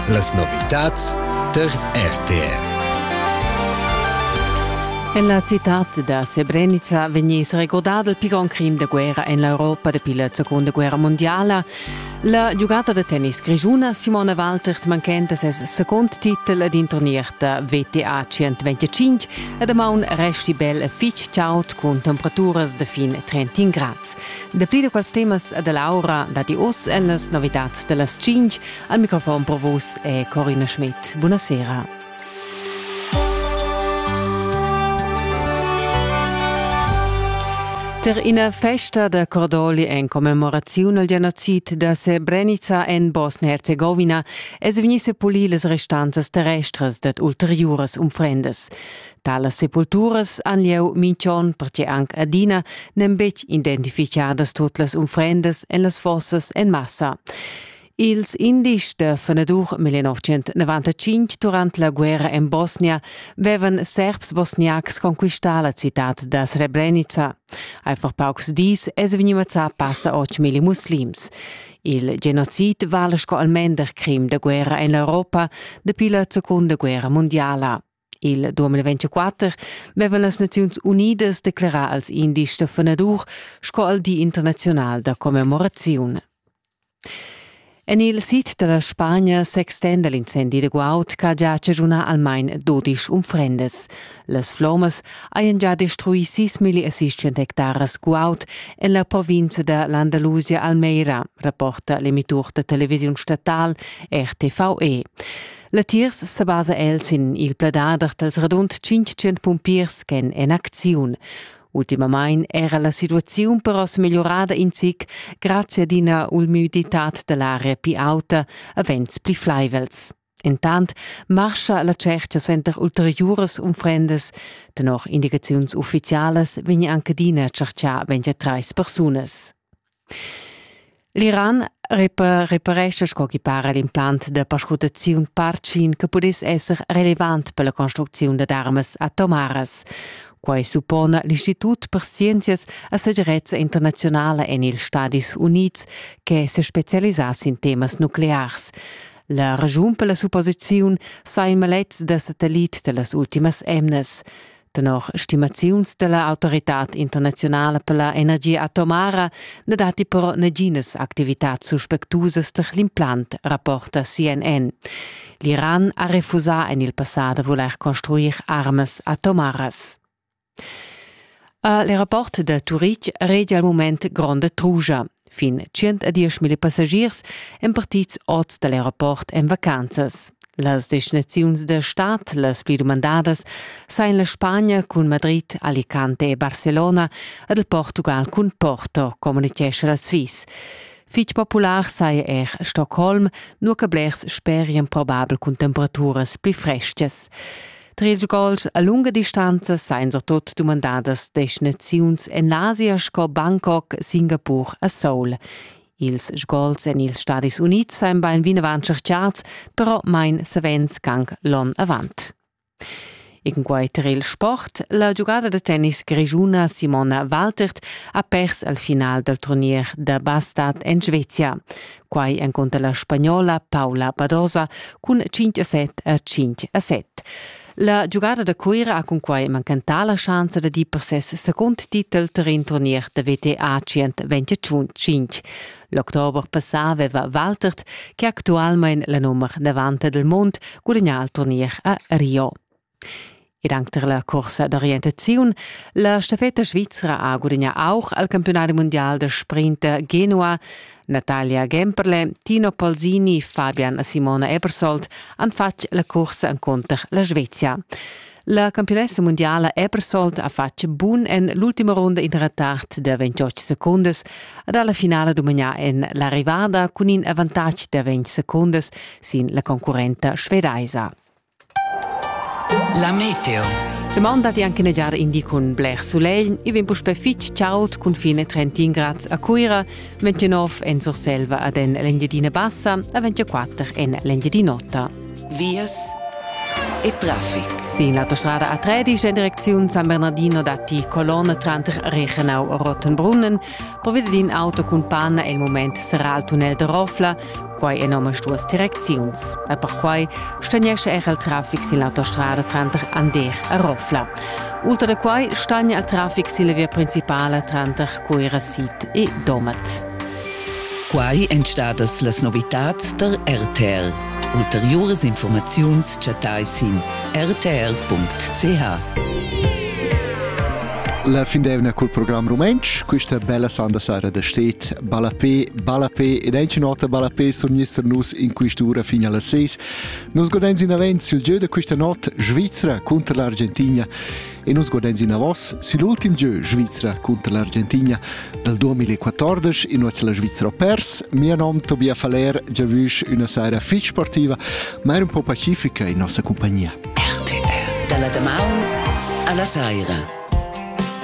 Las novitads tar RTR. En la citad da Srebrenica vegniss regordà il pi grond crim da guerra en l'Europa dapi la Seconda Guerra mondiala. La giugata da tennis grischuna Simona Waltert manchenta ses second titel ad in turnier da WTA 125 e damaun resti bel e fitg chaud cun temperaturas da fin 30 grads. Dapli da quels temas e da l'aura datti oz en las novitads da las tschintg. Al microfon pro vos è Corina Schmidt. Buonasera. Per ina festa da cordoli en commemoraziun al genocid da Srebrenica en Bosnia-Herzegovina es vegni sepulì las restanzas terrestras dad ulteriuras unfrendas. Talas sepulturas han lieu minch'on perche anc adina n'èn betg identifichadas tut las unfrendas en las fossas en massa. Ils indics da fenadur 1995 durant la guerra en Bosnia vevan serbs bosniacs conquistà la citat da Srebrenica. Einfach paucs dis es vegniva passa 8.000 muslims. Il genocid vala sco almender crim da guerra en l'Europa dapi la seconda guerra mondiala. Il 2024 vevan las Naziuns Unidas declerà als indis da fenadur sco al Di internaziunal da commemoraziun. En il sid da la Spagna s'extenda l'incendi da guaud ch'ha già chaschunà almain dodisch unfrendas. Las flommas hajan già destruì sis milli e siscent hectaras guaud en la provinza da l'Andalusia Almeira, rapporta l'emitur da televisiun statal RTV. Latiers sebasa el sin il pladader dals radund 500 pumpiers ch'èn en acziun. Ultimamain era la situaziun però smegliurada in zic grazie ad ina ulmüditad da l'aria pli auta a vents pli flaivels. Entant marscha la tschercha suenter ulteriuras unfrendas. Tenor indicaziuns uffizialas vegn anche adina tscherchà 23 persunas. L'Iran reparescha sco ch'i para l'implant da perscrutaziun Parcin che pudess esser relevant per la construcziun dad armas atomaras. Quai suppona l'Institut per scienzias e segirezza internaziunala en ils Stadis Unids che sespecialisà sin temas nuclears. La raschun per la supposiziun sa in maletg da satellit da las ultimas emnas. Tenor stimaziuns dalla autoritad internazionala per la energia atomara ne datti però naginas activitats suspectusas per l'implant, rapporta CNN. L'Iran ha refusà en il passà da voler construir armas atomaras. A l'aeroport da Turitg regia il mument gronda trugia. Fin 110.000 passagiers èn partids ord da l'aeroport en vacanzas. Las destinaziuns da stad las pli dumandadas sain la Spagna cun Madrid, Alicante e Barcelona ed il Portugal cun Porto, communitgescha la Sviss. Fitg popular saja er Stockholm, nua che blers sperian probabel cun temperaturas pli freschas. Tres gols a lunga distanza sain surtot dumandadas destinaziuns en l'Asia sco Bangkok, Singapur a Seoul. Ils sgols en ils Stadis Unids sain bain vinavant tscherchats, però main savens gang l'on avant. E cunquai tar il sport, la giugada da tennis grischuna Simona Waltert ha pers al final dal turnier da bastat en Svezia. quai encunter la spagnola Paula Badosa cun 5 a 7 a 5 a 7. La giugada da Cuira ha cunquai mancantà la schanza da dir per ses secund titel tar in turnier da WTA 125. L'october passà aveva Waltert, che actualmain la nummer 90 del mond, gudagnà il turnier a Rio. Ed anc tar la cursa d'orientaziun. La staffetta svizra ha gudagnà auch al campiunat mundial da sprinter Genua. Natalia Gemperle, Tino Polzini, Fabian e Simona Ebersold han fatg la cursa encunter la Svezia. La campionessa mundiala Ebersold ha fatg bun en l'ultima runda in retard da 28 secundas ed ha la finala dominà en l'arrivada cun in avantatg da 20 secundas sin la concurrenta svedaisa. La meteo. Semond datti anche negiar indi cun bler sulegl. I vegn puspè fitg chaud cun fine 31 grad a Cuira, 29 en Surselva ad en l'Engiadina Bassa e 24 en l'Engiadin'Ota. Vias e traffic. Sin l'autostrada A13 in direcziun San Bernardino datti colonne tranter Reichenau e Rottenbrunnen. Provide d'in auto cun panna è il moment serrà il tunnel de Rofla. Quai en omastuas direcziuns. E perquai stagnescha era il traffic sin l'autostrada tranter Ander e Rofla. Ultra da quai stagna il traffic sin la via principala tranter Cuira-Sid e Domat. Quai èn stadas las novitads der RTL. Ulteriuras informaziuns chattai sin rtl.ch. La fin d'evna cul program rumentsch, questa bella sanda sara da stet ballapé, ballapé ed è nota ballapé surnister nus in quest'ura fin alla seis. Nus godens in avent sul gieu da questa not Svizzera contro l'Argentina e nus godens in avos sull'ultim gieu Svizzera contro l'Argentina dal 2014 in nuoz la Svizzera pers. Mia nom Tobias Faller, giavüsch una saira fitch sportiva, ma er un po' pacifica in nossa compagnia. RTL dalla damaun alla saira.